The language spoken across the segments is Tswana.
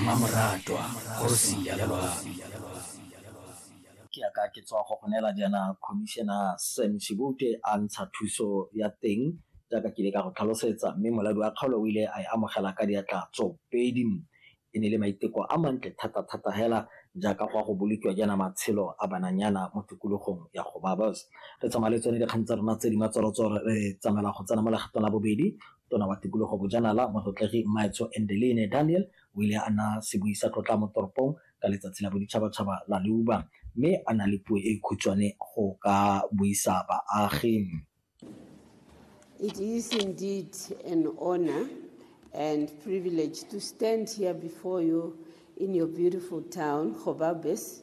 mmamoratwa kgosi ya lelwang ke ya ka ke tswa go go neela jaana commissioner sam shibute a ntsha thuso ya teng jaaka ke ile ka go tlhalosetsa mme moladi wa kgaolo o ile a e amogela ka diatla tsopedi e ne le maiteko a mantle thata-thata hela jaaka go a go bolokiwa jaana matshelo a bananyana mo tikologong ya go babas re tsamaya le tsone dikgang tsa rona tse di matsoratsoro re tsamaela go tsena mo legatong la bobedi Tona wa Tikologo Bojanala, Motlotlegi Mmaetsho Endeline Daniel o ile a naya sebui sa tlotla mo toropong ka letsatsi la boditšhabatšhaba la leuba mme a na le puo e e khutshwane go ka buisa baagi. It is indeed an honor and privilege to stand here before you in your beautiful town, Gobabis.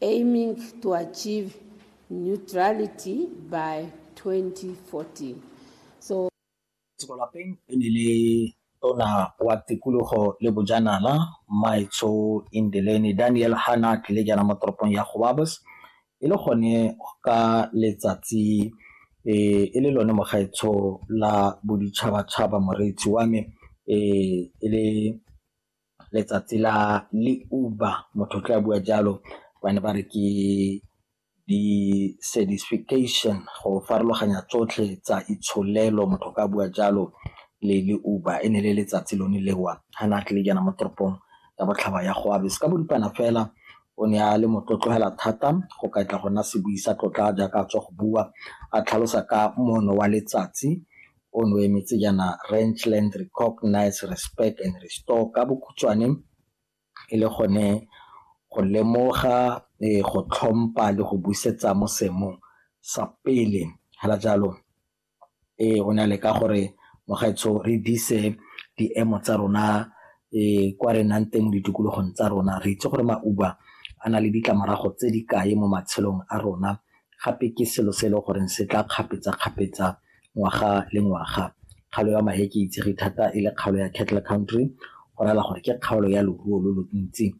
Aiming to achieve neutrality by 2014. So. Tseko lapeng e ne le tona wa tikologo le bojanala Maitsho Indeleni Daniel Hanak le jana mo toropong ya Gobabos e le gone ka letsatsi e e le lone mogaetsho la boditšhabatšhaba moreetsi wa me e e le letsatsi la le uba motho o tla bua jalo ba ne ba re ke di-certification go farologanya tsotlhe tsa itsholelo motho ka bua jalo le le uba e ne le letsatsi lone lewa ga ne a tlile jana mo toropong ya botlhaba ya go abe se ka boripana fela o ne a le motlotlogela thata go ka tla go nna sebui sa tlotla jaaka a tswa go bua a tlhalosa ka mono wa letsatsi O no emetse jaana Rentland Recognise, Respect and Restore, ka bokhutshwane e le gone go lemoga, go tlhompha le go busetsa mo seemong sa pele. Fela jalo o ne a leka gore mogaetsho re dise diemo tsa rona kwa re nang teng mo ditikologong tsa rona. Re itse gore mauba a na le ditlamorago tse di kae mo matshelong a rona, gape ke selo se e le goreng se tla kgapetsa-kgapetsa ngwaga le ngwaga. Kgaolo ya Maheke e itsege thata e le kgaolo ya Cattle Country go raya gore ke kgaolo ya loruo lo lo ntsi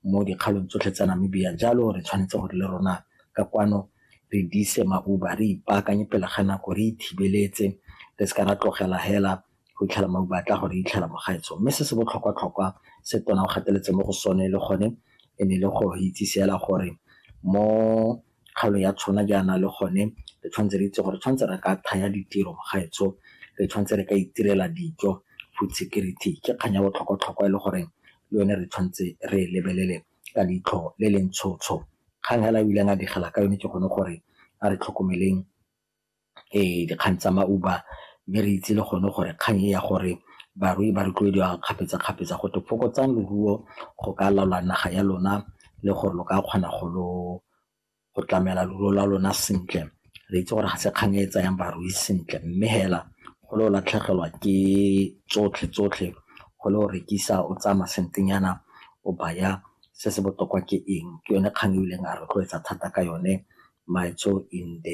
mo dikgaolong tsotlhe tsa Namibia jalo re tshwanetse gore le rona ka kwano re dise mauba, re ipaakanye pele ga nako, re ithibeletse re se ka ra tlogela hela go itlhela mauba a tla go re itlhela mo gaetsho. Mme se se botlhokwa-tlhokwa se tona o gateletse mo go sone le gone e ne e le go re itsise hela gore mo kgaolo ya tshona jaana le gone re tshwanetse re itse gore tshwanetse re ka thaya ditiro mogaetsho re tshwanetse re ka itirela dijo food security ke kgang ya botlhokwa-tlhokwa e le gore le yone re tshwanetse re e lebelele ka leitlho le le ntshotsho kgang hela ebileng a digela ka yone ke gone gore a re tlhokomeleng dikgang tsa ma-Uber mme re itse le gone gore kgang e ya gore barui ba rotloediwa kgapetsa-kgapetsa go twe fokotsang leruo go ka laola naga ya lona le gore lo ka kgona go lo go tlamela leruo la lona sentle. Re itse gore ga se kgang e e tsayang barui sentle mme fela go le o latlhegelwa ke tsotlhe-tsotlhe go le o rekisa o tsaya masentenyana o baya se se botoka ke eng, ke yone kgang e bileng a rotloetsa thata ka yone Maetso in the .